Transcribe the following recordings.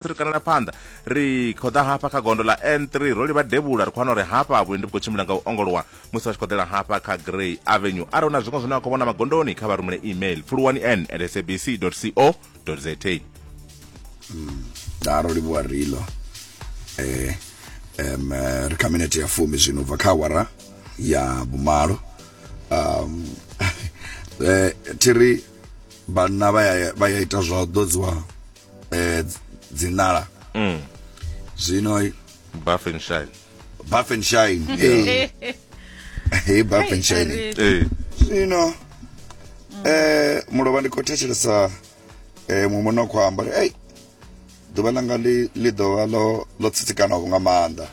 ri kanela phanḓa ri khou ḓa hafha kha gondo ḽa n3 ro livha devhula ri khou wana uri hafha vhuendi vhu khou tshimbila nga u ongolowa musi vha tshi khou ḓela hafha kha grey avenue arali hu na zwiṅwe zwine vha khou vhona magondoni kha vha rumele email pfuluwani n at sabc co za daro hmm, livhuwa rilo eh, um, eh, ri kha minete ya fumi zwino bva kha awara ya vhumalo um, eh, thiri vhanna vha ya ita zwa u ḓodziwa eh dzi nala mm zwino buff and shine buff and shine eh hey buff and shine eh zwino eh mulovha ndi khou thetshelesa eh muṅwe no khou amba hey ḓuvha langa ḽi ḽi ḓovha ḽo ḽo tsitsikanaho nga maanḓa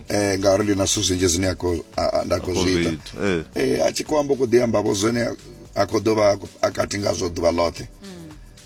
eh ngauri ndi na zwithu zwinzhi zwine a khou a- a- nda khou zwi ita eh eh a tshi khou amba u khou ḓi ambavho zwine a khou ḓovha a kati ngazwo ḓuvha ḽoṱhe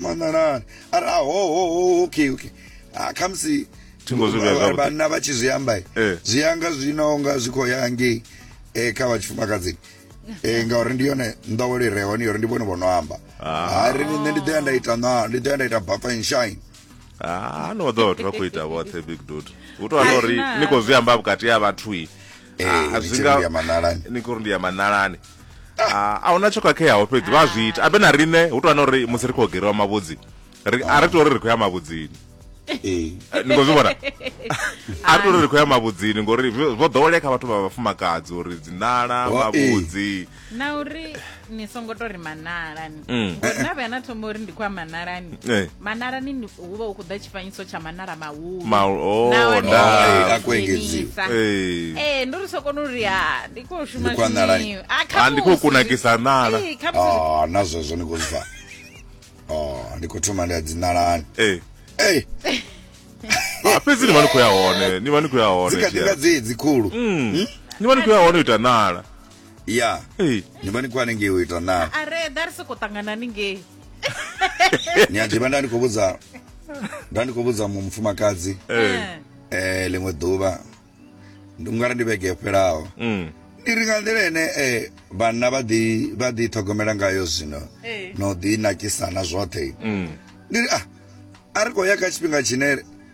mananani ari ahohoho okay okay ah, khamusi Thingo zwi vhea zwavhuḓi. vhanna vha tshi zwi amba Eh. zwi yanga zwino nga zwi khou ya ngei eh, kha vha tshifumakadzini Eh, ngauri ndi yone nḓowelo i re hone yori ndi vhone vho no amba Ah. hari nṋe ndi ḓoya nda ita na ndi ḓoya nda ita buffer and shine Ah, no vha ḓo vhathu vha khou ita vhoṱhe big dude hu tou vha na uri Aina. ni khou zwi amba vhukati ha vhathu i Eh, Ah, ni zwi tshi nga- ri ndi ya maṋalani. ni khou ri ndi ya maṋalani Ah, a huna tsho khakheaho fhedzi vha zwi ita abe na riṋe hu tou vha uri musi ri khou geriwa mavhudzi ri- a ri tou uri ri khou ya mavhudzini Eh, Eh, ni khou zwi vhona a ri tou uri ri khou ya mavhudzini ngori vho vho ḓowelea kha vhathu vha vhafumakadzi uri dzinala Oh, eh. mavhudzi na uri ni songo to ri manalani mm. ngori na vhuya na thoma uri ndi khou ya manalani eh. manalani hu vha hu khou ḓa tshifanyiso tsha manala mahuluakuengedziwa oh, ee eh, ndo ri so kona uri ha ndi khou shuma zwiniwi ah, ah, ndi khou kunakisa nala eh, ah, na zwezwo ni khou zwi fa ndi khou thoma ndi a dzinalani ee fhedzi ni vha ni khou ya hone ni vha ni khou ya hone dzikadinga dzedzi khulu mm. hmm? ni vha ni khou ya hone u ita nala ya Hey. ndi mani kwani ngei u ita na are da ri soko ṱangana ni ngei nyadzhima nda ndi khou vhudza nda ndi khou vhudza mu- mufumakadzi Eh. eh ḽiṅwe ḓuvha ndi ungari ndi vhege yo fhelaho Mm. ndi ri nga nḓila ene eh vhanna vha ḓi vha ḓi ṱhogomela ngayo zwino Eh. no ḓi nakisana zwoṱhe Mm. ndi ri ah a ri khou ya kha tshifhinga tshine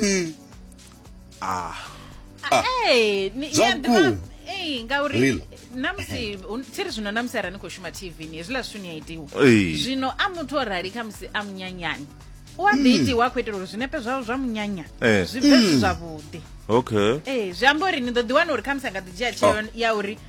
mm. ah. ah. Hey, ni- Zwa yeah, ndi vhukuma. ma- Hey, ngauri Real. namusi un- tsiri zvino namusi arani khou shuma tv ni hezvila zwithu ni a itiwa Ei. zvino a muthu o rali khamusi a munyanyani u a ḓi itiwa a khou itela uri zwinepe zwawo zwa munyanya Eh. zwi bve zwi zwavhuḓi okay ee zwi amba uri ni ḓo ḓi wana uri khamusi a nga ḓi dzhia tsheo ya uri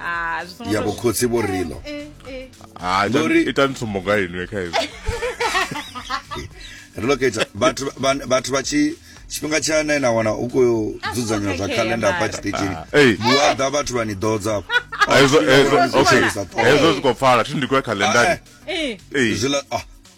ah, ya bokhotsi bo rilo eh, eh, ah, e tla ntshomo ka enwe ka enwe re loketsa batho batho ba tshi tshifhinga tsha na ina wana u khou ah, dzudzanywa zwa calendar hafha tshiṱitshini vhuaḓa vhathu vha ni ḓodza afho hezwo zwi khou pfala thi ndi khou ya calendari zwiḽa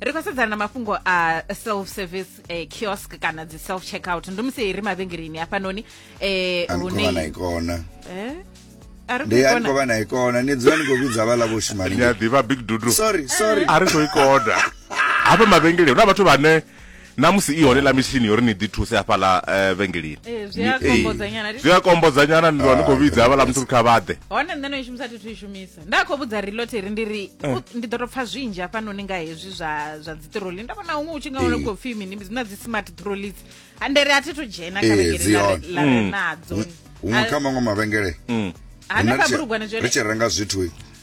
ri khou sedzana na mafhungo a self service eh, kiosk kana dzi self checkout ndi musi ri mavhengeleni hafhanoni eh, a ni khou vha na hune ikona Eh? a ri ndi a ni khou khou vha na ikona ni dzula ni khou vhidza vhaḽa vho shuma ndi a ḓivha big dudu sorry sorry a ri khou i koda hafha mavhengeleni huna vhathu vhane na musi i hone la mitshini yori ni ḓi thuse hafhaḽa eh, vhengelini Eh, zwi a Ni- eh, kombodzanyana, ri- zwi a kombodzanyana ni ḓo ni khou vhidza havhaḽa muthu ri kha vhaḓe hone nṋe no i shumisa thi thu i shumisa nda khou vhudza riloteri ndi ri Eh. u- ndi ḓo to pfa zwinzhi hafhanoni nga hezwi zwa zwa dzi troli nda vhona huṅwe u tshi nga wana Eh. khou pfi mini zwi na dzi smart trolis handere a thi thu dzhena kha Eh, vhengele dzi la- hone. la re Mm. nadzo huṅwe A- kha maṅwe mavhengele hanefha bulugwane ri zwone tshi renga zwithu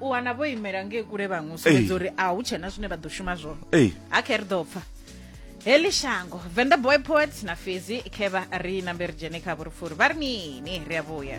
u wana vho imela ngei kule vhaṅwe u sumbedza uri a hu tshena zwine vha ḓo shuma zwone ha khe ri ḓo pfa heḽi shango venda boy poet na fhedzi khe vha ri nambe ri dzhene kha vhurifuri vha ri mini ri a vhuya